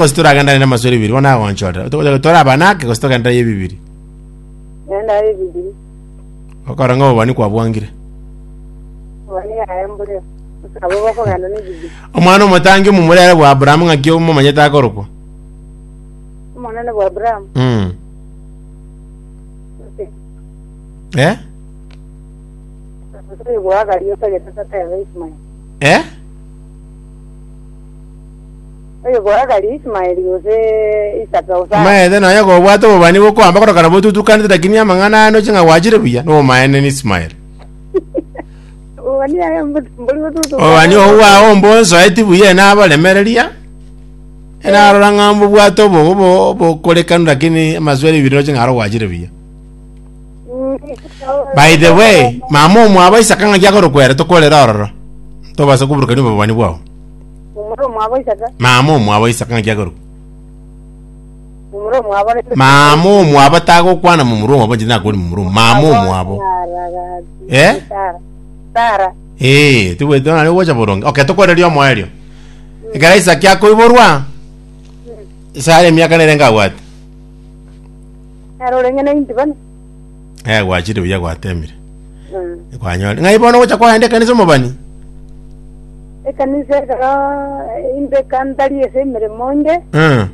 Gose toragendane namasore bibiri, bono agonchorera. Otogocha gose toraba nake, gose togendera ye bibiri. Nenda ye bibiri. Okora ng'a obobani kwabwangire. Obani yaye mbure. Abo bakogenda ne bibiri. Omwana omotangi omomurere bwa Abrahamu ng'aki omomanyete akorokwa? Omonene bwa Abraham. Mm. Eh? Omusiri bwa Agari otagete tatebe Ismael. Eh? Oyogoagarie Ismaeli gose Isaka gose Abraham. Omaete nonya kobwate obobani bokoamba korokana botutukanete lakini amang'ana aya noche ng'a gwachire buya, nobomaene na Ismaeli. Obobani aye mbo- mbori gotutuka. Obobani obo bwao mbonsoeti buya enaboremereria, enarora ng'a mbobwate obo- obo- obokorekanu lakini amaswera ebiri noche ng'a aro gwachire buya. Mm. By the way, mama omwabo Isaka ng'aki akorokwa ere tokorera ororo. Tobasa koburukania obobani bwao. Momura omwabo Isaka, Mama omwabo Isaka ng'aki akorwa? momura omwabo Rebeka. Mama omwabo tagokwana momura omwabo inche nakori momura omwabo. Mama omwabo. Aragati. Eh? Sara. Sara. Ee, tibwete nari gocha boronge. Okay, tokoreria omoerio. Ekero Isaki akoiborwa, Sara emiaka nere ngabwate. Nero orenge na inti bane. Eh, gwachire buya gwatemire. Mm. Kwanyore. Ng'ai bono gocha kwagenda ekanisa omobani? ekanisa ekero inde kantari ase emeremo nde Eh.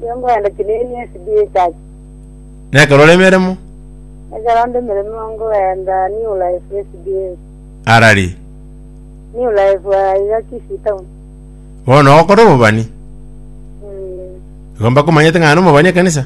nigo nkoenda chinini esda church Nekero ore emeremo? ekero nde emeremo nkoenda new life esda Arari. new life aiga kisii town Bono okore omobani? Mm. Igo mbakomanyete ng'a nomobani ekanisa?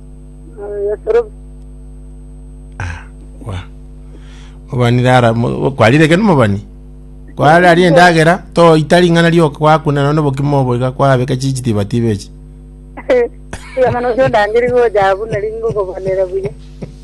Kwa. Mobani rara mo- kwarire ekero mobani. Kware ari endagera to itari ng'ana rioka kwakuna nono bokima oboiga kwabeka chichi tiba tiba echi. Tiamana ojo ndangeri gocha abwo nari ngokobanera buya.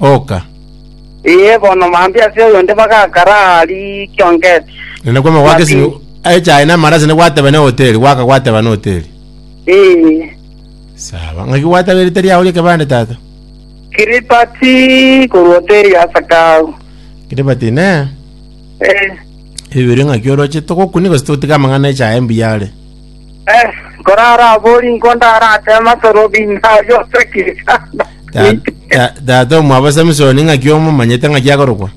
Oka. Ee, bono mambia ase oyonde bagakara aa rikia ongeti. Na nakwo amagwa Mati. kesimi echae na amarase negwateba ne hoteli gwaka gwateba ne hoteli. Ee, Sawa. Ngaki gwateba erita riao ria kebande tata? kiripati korwa hoteli ya Sakau. Kiribati ne Ee, ebibere ngaki oroche togokunia gose totiga amang'ana echae mbuya are. Eh, nkore arabori nko ndaratema sorobi nayo sekisa. Ta- ta- tata omwabo samisoni ng'aki omomanyete ng'aki akorokwa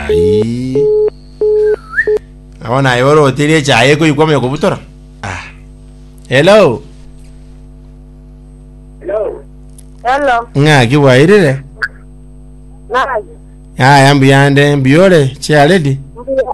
Ai. abo naye ore otiri echaye ekoyikwa omoyo kobutora Ah. hello Hello, ng'aki bwairire nani? aya mbuyande mbuyore chiaredi Mbuya.